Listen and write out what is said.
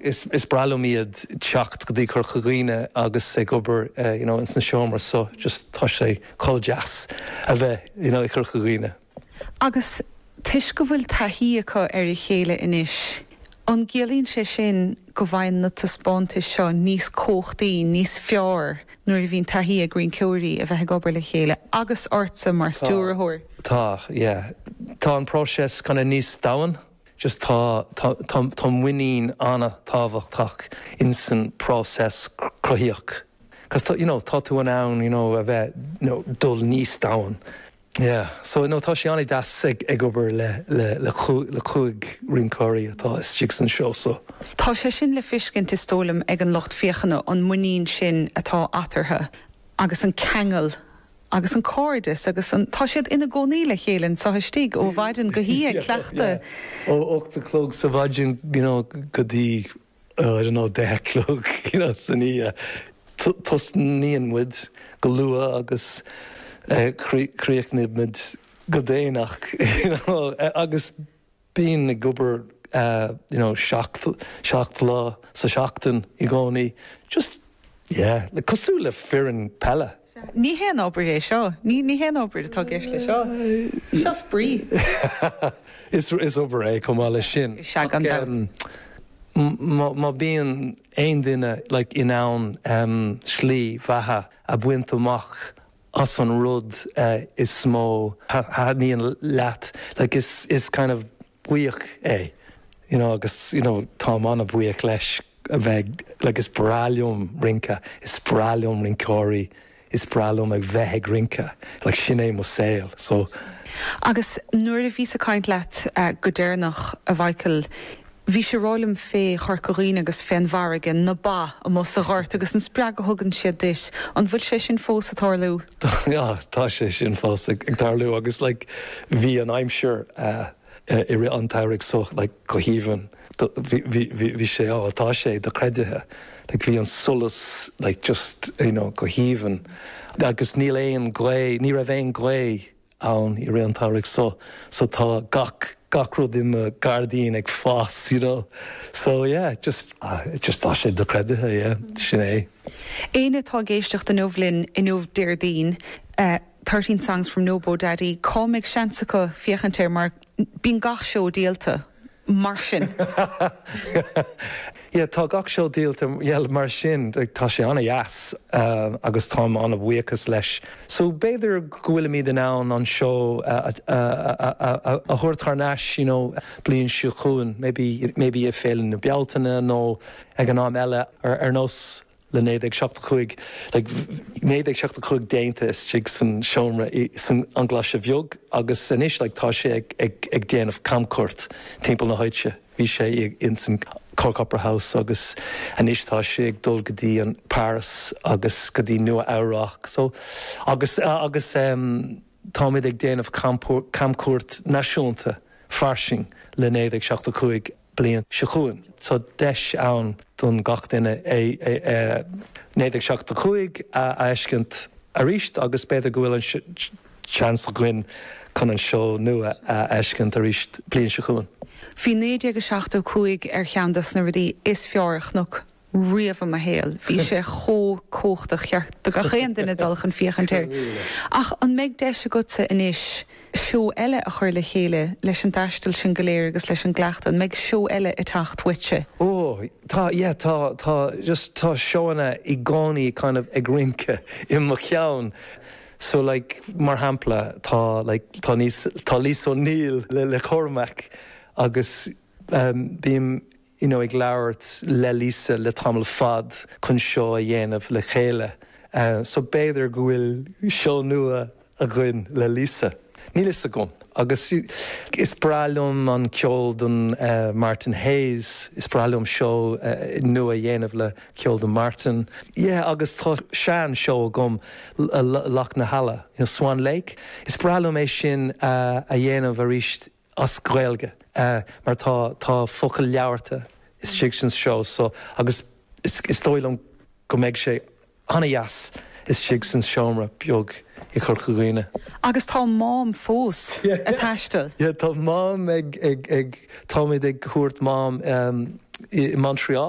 Is breá liom iad teacht go dtí Corca Dhuibhne agus ag obair you know ins na seomra so just tá sé chomh deas a bheith you know i gCorca Dhuibhne. Agus toisc go bhfuil taithí acu ar a chéile anois, an gciallaíonn sé sin go bhfaigheann na taispeántais seo níos cumhachtaí, níos fearr nuair a bhíonn taithí ag rinceoirí a bheith ag obair le chéile agus ortsa mar stiúrthóir? Tá, yeah. Tá an próiseas kinda níos domhain. just tá, tá, tá, tá muinín an-tábhachtach in san próiseas cruthaíoch cos tá, you know, tá tú in ann, you know, a bheith, you know, dul níos domhain. Yeah, so, you know, tá sé an-deas ag, ag obair le, le, le cúig, le cúig rinceoirí atá istigh san seó so. Tá sé sin le fiscint is dóigh liom ag an lucht féachana, an muinín sin atá eatarthu agus an ceangal. agus an cairdeas agus an. tá siad ina gcónaí le chéile anseo istigh ó mhaidin go hoíche ag cleachtadh. ó hocht a chlog sa maidin you know go dtí oh I don't know deich a chlog you know san oíche. tosnaíonn muid go luath agus críochnaímid go déanach you know agus. Bíonn muid ag obair you know seacht, seacht lá sa tseachtain i gcónaí just yeah like cosúil le foireann peile. Sea, ní haon obair é seo, ní, ní haon obair atá i gceist leis seo, seo spraoi. Is, is obair é chomh maith leis sin Sea, gan aon dabht. em má, má bhíonn aon duine like in ann em slí bheatha a bhaint amach as an rud is mó a thaitníonn leat, like is is cineál bua é you know agus you know táim an-bhuíoch leis a bheith like is breá liom rince, is breá liom rinceoirí, is breá liom a bheith ag rince, like sin é mo saol so. Agus nuair a bhíos ag caint leat go deireanach, a Mhíchíl, Bhís ag rá liom fé Chorca Dhuibhne agus fén bhfarraige, na ba, amuigh sa ghort agus an spreagadh a thugann siad duit, an bhfuil sé sin fós ag tarlú? Tá, tá sé sin fós ag tarlú agus like bhí an aimsir i rith an tsamhraidh so like go haoibhinn, bhí sé á, tá sé docreidithe, like bhí an solas like just you know go haoibhinn agus níl aon ghaoth, ní raibh aon ghaoth. ann i rith an tsamhraidh so so tá gach gach rud i mo gairdín ag fás you know so yeah just just tá sé do-chreidithe yeah sin é. Éinne atá ag éisteacht inniu linn inniu Déardaoin eh thirteen songs from Nobodaddy an mbeidh seans acu féachaint air mar bíonn gach seó díolta. mar sin. Yeah tá gach seó díolta yeah mar sin tá sé an-deas agus táim an-bhuíochas leis so b'fhéidir go bhfuilimid in ann an seó a thabhairt thar n-ais you know bliain seo chugainn maybe maybe ag Féile na Bealtaine nó ag am eile ar nós le 1975 déanta istigh san seomra sa Ghlaise Bheag agus anois tá sé ag déanamh camchuairt timpeall na háite. Bhí sé ins an Cork Opera House agus anois tá sé ag dul go dtí an Paris agus go dtí Nua Eabhrác so agus, agus, eh. Táimid ag déanamh camchuairt náisiúnta fairsing le 1975 bliain seo chugainn. Tá deis ann don gach duine 1975 a fheiscint arís agus b'fhéidir go bhfuil an seans againn chun an seó nua a fheiscint arís bliain seo chugainn. Bhí 1975 ar cheann dos na rudaí is fearr a chonac. riamh i mo shaol. Bhí sé chomh cumhachtach, cheart do gach aon duine dul chun féachaint air. Ach an mbeidh deis agatsa anois seó eile a chur le chéile leis an dtaisteal sin go léir agus leis an gcleachtadh? An mbeidh seó eile ag teacht uaitse? Ó, tá, yeah, tá, tá, just, tá seóanna i gcónaí kind of ag rince i mo cheann. So like, mar shampla, tá like, tá Lis, tá Lisa O'Neill le Cormac agus bím, you know ag labhairt le Lisa le tamall fad chun seó a dhéanamh le chéile so b'fhéidir go bhfuil seó nua againn le Lisa, níl fhios agam agus is breá liom an ceol don Martin Hayes, is breá liom seó nua a dhéanamh le ceol don Martin yeah agus tá sean seó agam Loch na hEala you know Swan Lake, is breá liom é sin a dhéanamh aríst as Gaeilge mar tá tá focal labharta istigh san seó so agus is is dóigh liom go mbeidh sé an-deas istigh san seomra beag i gCorca Dhuibhne. Agus tá Mám fós ag taisteal. Yeah tá Mám ag ag ag táimid ag thabhairt Mám go Montreal.